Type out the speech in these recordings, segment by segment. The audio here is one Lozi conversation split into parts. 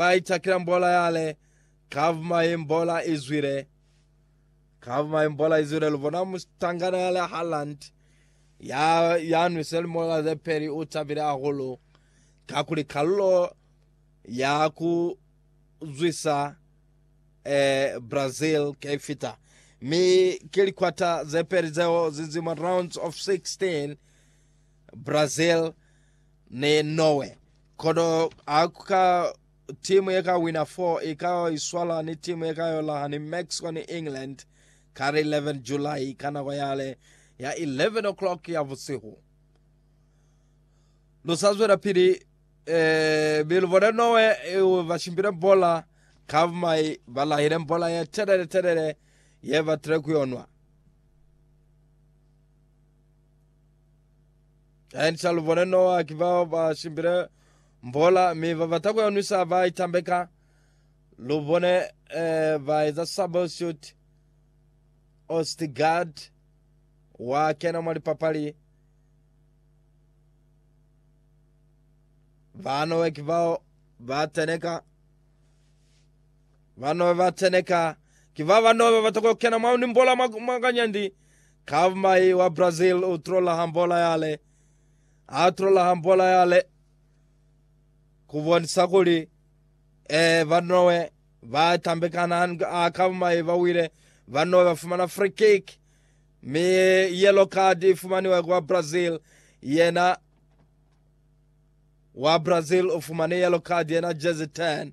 Ba itakila mbola yale, Kav mai mbola izwile, Kav mai mbola izwile. Lubona mutangana yale Haaland ya yanwise limola ze peli u tabile hahulu kakuli kalulo ya ku zwisa eh, Brazil ke fita mi ke likwata ze peli zeo zizima rounds of 16 Brazil ni Norway. Kono ha ku ka timu ye ka wina 4 i ka yo iswala ni timu ye ka yo laha ni Mexico ni England ka li 11 July ka nako yale ya 11 o'clock ya busihu. Lu sa zwelapili eh, mi lu bone Norway eh, ba shimbile bola ka bumai, ba lahile bola ye telele telele ye batile ku yonwa. And sa lu bone Noa ki bao ba simbile mbola mi ba bata ku ya nwisa ba itambeka. Lu bone eh, ba eza sabo suit Ostigard wa kena mwa lipapali. Ba Noa ki bao ba teneka. Banobe ba teneka ki baba nobe bata ku yo kena mwa nimbola mwa kanyandi, ka mai wa Brazil u trola hambola yale. A trola hambola yale ku bonisa kuli, ee, banobe ba tambekana ha ka mai ba wile. Banobe ba fumana free kick, mi yellow card i fumaniwe kwa Brazil. Yena wa Brazil u fumane yellow card, yena jersey 10.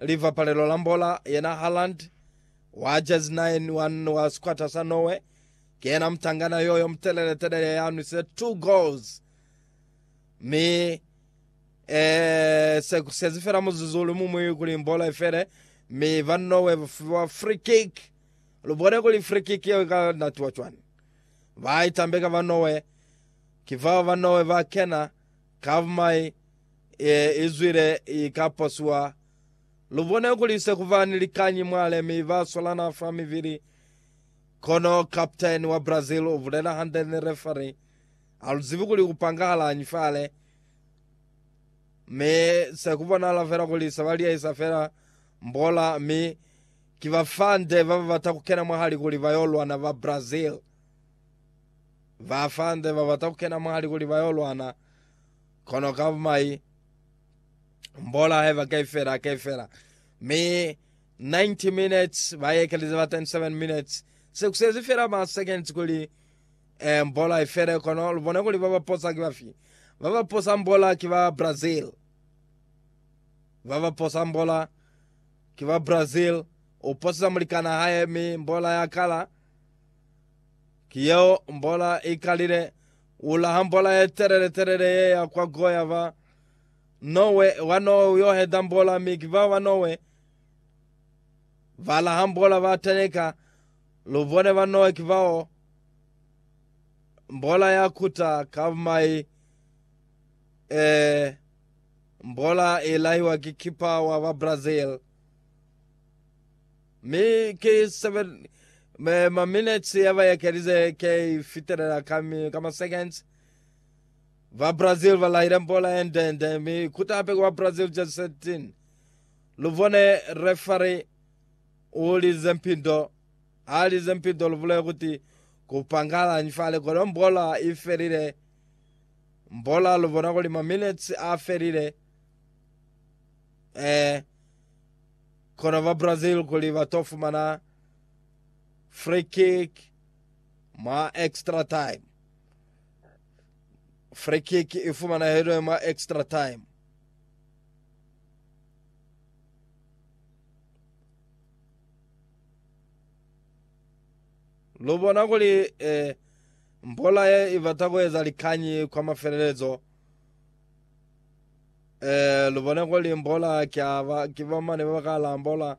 Livapalelo la mbola yena Haaland wa jezi 9 wa sikwata sa Norway ki yena mutangana yoyo mutelele-telele ya nwise 2 goals mi eh, se kusezi fela muzuzu uli mumwi kuli mbola ifele mi ba Norway bafiwa free kick. Lubone kuli free kick yeo ka natiwa cwani. Ba itambeka ba Norway ki bao ba Norway ba kena Kavumai e izwile i ka pasuwa. Lu bone kuli se ku ba ni likañi mwa le mi ba swalana fa mivili. Kono kaputeni wa Brazil u bulela hande ni refari, Ha lu zibi kuli ku pangahalañi fale, mi se ku bonahala fela kuli se ba liyahisa fela mbola, mi ki bafande ba ba bata ku kena mwahali kuli ba yo lwana ba Brazil. Ba fande ba bata ku kena mwali kuli ba yo lwana, kono ka mai mbola haiba ka ifela ka ifela. Mi 90 minutes ba yekelize ba 27 minutes. Se kusezi fela ma seconds kuli eh, mbola ifele kono lubone kuli ba baposa ki bafi. Ba baposa mbola ki ba Brazil. Ba baposa mbola ki ba Brazil. Uposisa mulikana hae mi mbola ya kala. Ki yeo mbola i kalile, U laha mbola ye telele telele ye ya kwa Goya ba Nowe, wa Nowe u yo heta mbola, mi ki bao ba Nowe ba laha mbola ba teneka, lu bone ba Nowe ki bao mbola ya kuta ka mai, ee, mbola i lahiwa ki kipa wa ba Brazil. Mi ki 7 ma minutes ya ba ekelize ki fitelela ka mi ka ma seconds. Ba Brazil ba lahile mbola ye nde nde mi kuta hape ku ba Brazil jezi 17. Lu bone referee u lize mpindo. Ha lize mpindo lu bule kuti ku pangalañi fale kono mbola i felile. Mbola lu bona kuli ma minutes a felile. Eh. Kono ba Brazil kuli ba to fumana free kick mwa extra time. Free kick i fumanahilwe mwa extra time. Lu bona kuli eh, mbola ye i bata ku eza likanyi kwa mafelelezo. Eh, lubone kuli mbola ki aba, ki bamane baba ka lambola.